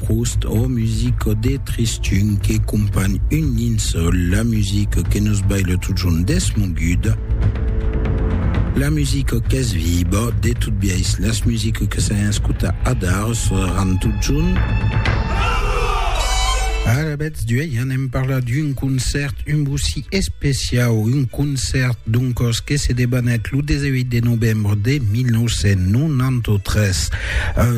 Proust, ò musico de Tristun que companh un linçol, la musico que nos baila totjorn desmoguda, la musico qu'es viba, de tot biais las musico que s'an escuta adar seràn totjorn. Alavetz d'uei anem parlar d'un concèrt un bocí especiau, un concèrt doncòs que se debanèt lo 18 de novembre de 1993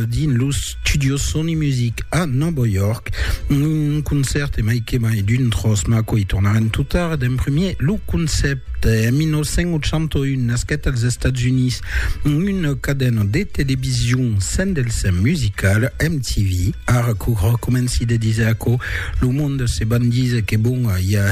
dins los Studio Sony Music a Nòva York, un concèrt e mai que mai d'un tròç maco i tornarem tot tard d'emprimier lo concèpte. En 1981 nasquèt als Estats Units una cadena de television sent del sèm musical, MTV. Ara qu'o recomenci de diser aquò, lo monde se van diser que bon, i a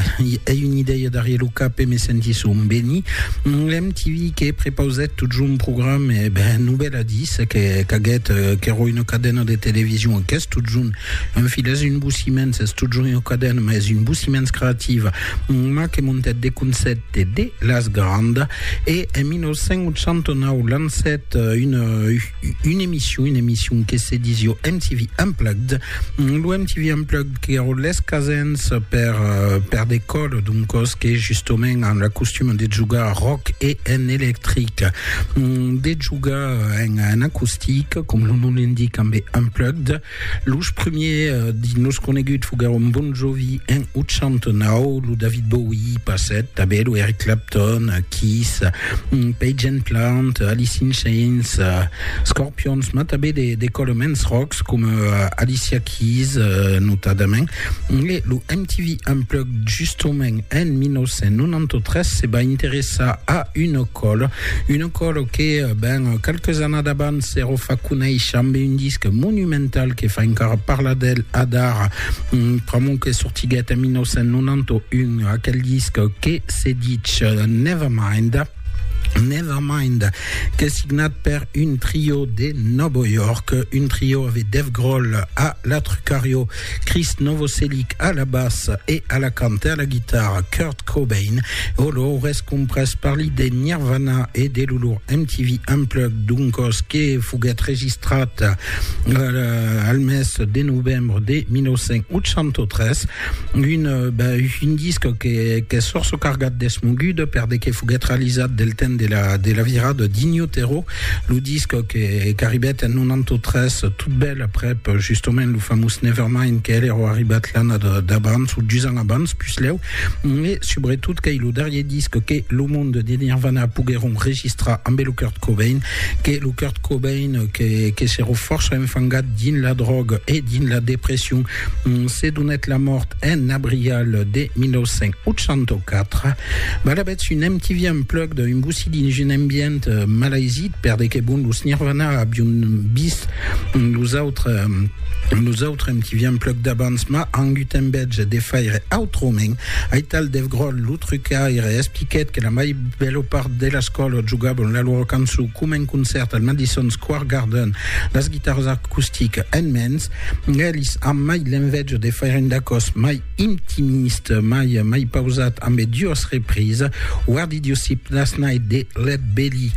ei una idèia darrier lo cap e me sentisson beni. MTV que prepausèt totjorn programes e ben, novèla d'i Se que caguèt qu'èra una cadena de television, qu'es totjorn un fil, es un bossiments, es totjorn una cadena, mas es un bossiments creativa, mas que montèt de concèpte de las grandas, e en 1989 lancèt una emission, una emission que se disiá MTV Unplugged, Lo MTV Unplugged que ero les casens per, per de còl d'un còs que justement an la costum de jogar rock e en electric, de jogar en, en acustic, com lo nom l'indique, amb Unplugged. Los primiers dins los coneguts foguèron Bon Jovi en 89, lo David Bowie passèt tanben, lo Eric Clapton, Kiss, Page and Plant, Alice in Chains, Scorpions, mas tanben de, de colements ròcs coma Alicia Keys, notadament. E lo MTV Unplugged, justament, en 1993, se va interessar a un còl, un còl que, ben, qualques annadas abans s'èra fa conéisher amb un disc monumental que fa encara parlar d'el adara, pr'amor que sortiguèt en 1991 aquel disc que se ditz Nevermind. Nevermind, qu'es signat per un trio de Novo York, un trio avec Dave Grohl a la trucario, Chris Novoselic a la basse e a la cante a la guitarra, Kurt Cobain, o l'or es comprès per li de Nirvana e de l'olor MTV Unplugged d'un cos que foguèt registrat al mes de novembre de 1983. Un, ben, un disc qu'es sorço cargat d'esmoguda per de que foguèt realizat del temps de la, de la virada d'Inyo Tero, lo disc qu'arribèt en 93, tot bèl aprèp justament lo famós Nevermind que el èra arribat l'anna d'abans o dus ans abans puslèu, e subretot qu'ei lo darrier disc que lo monde de Nirvana poguèron registrar ambe lo Kurt Cobain, que lo Kurt Cobain que, que s'èra fòrça enfangat dins la dròga e dins la depression Se donèt la mòrt en abrial de 1984. Balabètz un MTV Unplugged d'un bocí dins un ambient malaisit per de que bon los Nirvana avion vist los autres los autres MTV Unplugged d'abans mas angut en bètge de faire autrament. Aital Dave Grohl lo trucaire expliquèt que la mai bèla part de las còlas jogabon la lora cançon coma un concèrt al Madison Square Garden las guitaras acusticas en mens. Elis an mai l'enveja de faire un dacòs mai intimist, mai mai pausat ambe duas reprise, Wardy Diosip Last Night de Lead Belly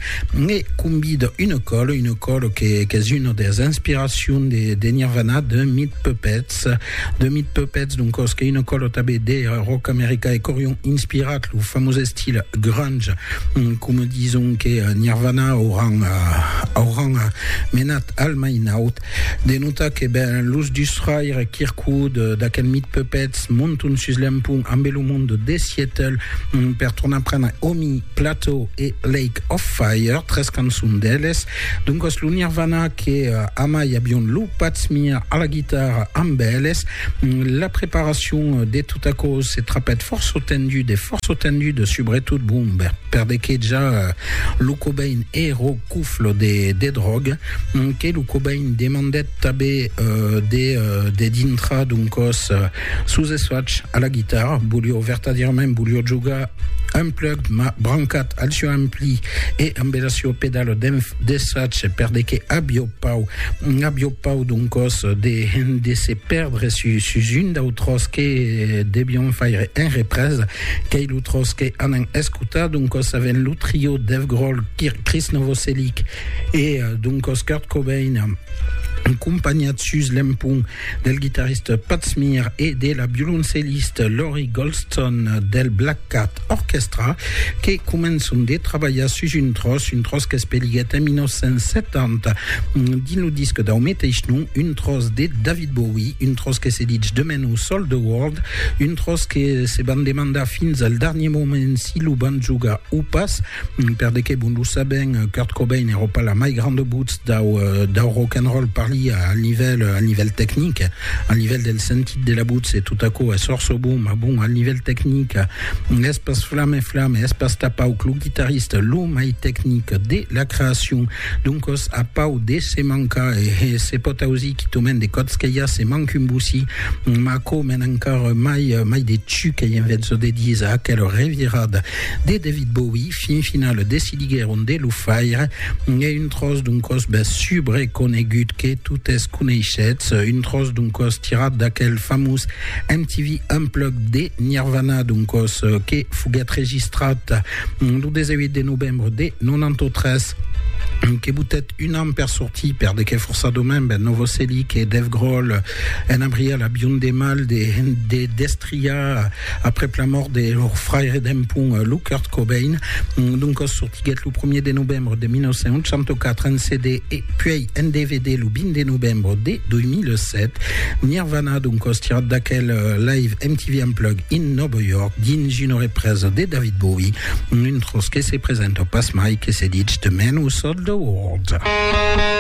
e Combid Une Colle, une colle que qu'es una des inspiracions de de Nirvana de Meat Puppets, de Meat Puppets d'un còs que une colle tabé de rock america e qu'aurion inspirat lo famós estil grunge coma dison que Nirvana auran auran menat al mai naut. De notar que ben los dus fraires Kirkwood d'aquel mit Puppets monton sus l'empont ambe lo mond de Seattle per tornar prendre Omi, Plateau e Lake of Fire, tres cançons d'eles. Doncas lo Nirvana que amai avion lo Pat Smear a la guitarra amb eles. La preparacion de tot aquò se trapèt fòrça tendud e fòrça tendud subretot bon per dequejar lo Cobain e Rock Couffle de dròga. que lo Cobain demandèt tanben de de dintra d'un còs sus esfach a la guitarra, volió vertadièrament volió jogar unplugged ma brancat al sieu ampli e ambe la sieu pedala d'esfach per de que avió pau avió pau d'un còs de de se perdre sus, sus un dau tròç que devión faire en represa qu'ei lo tròç que anam escotar d'un còs avèn lo trio Dave Grohl, Chris Novoselic E doncas Kurt Cobain, acompanhat sus l'empont del guitarrista Pat Smear e de la violoncellista Lori Goldston del Black Cat Orchestra, que començan de trabalhar sus un tròç, un tròç qu'es peliguèt en 1970 dins lo disc dau meteis nom, un tròç de David Bowie, un tròç que se ditz de menor Sold the World, un tròç que se van demandar fins al darnier moment si lo van jogar o pas. Per de qué bon lo sabèm, Kurt Cobain èra pas la mai granda votz dau rock and roll, parlia al nivèl, al nivèl tecnic, al nivèl del sentit de la votz e tot aquò es fòrça bon, mas bon, al nivèl tecnic, es pas Flamme Flamme, es pas tà Pau lo guitarrista lo mai tecnic de la creacion. Doncas a Pau de se mancar e se pòt ausir quitament de còps que i a se manc un bocí, mas aquò mena encara mai, mai de chuc e en vètza de díser aquela revirada De David Bowie, fin final decidiguèron de lo faire e un tròç d'un còs bèth subre conegut que totes coneishetz, un tròç d'un còs tirat d'aquel famós MTV Unplugged de Nirvana, d'un còs que foguèt registrat lo 18 de novembre de 93, que botèt un an per sortir per de qué forçadament bèth Novoselic e Dave Grohl en abriá la biondemà de destriar Aprèp la mòrt de lor fraire dempun, lo Kurt Cobain, d'un còs sortiguèt lo primièr de novembre de 1984 en CD e puèi en DVD lo 20 de novembre de 2007, Nirvana, d'un còs tirat d'aquel Live MTV Unplugged in Nòva York dins una represa de David Bowie, un tròç que se presenta pasmai que se ditz The Man Who Sold the World.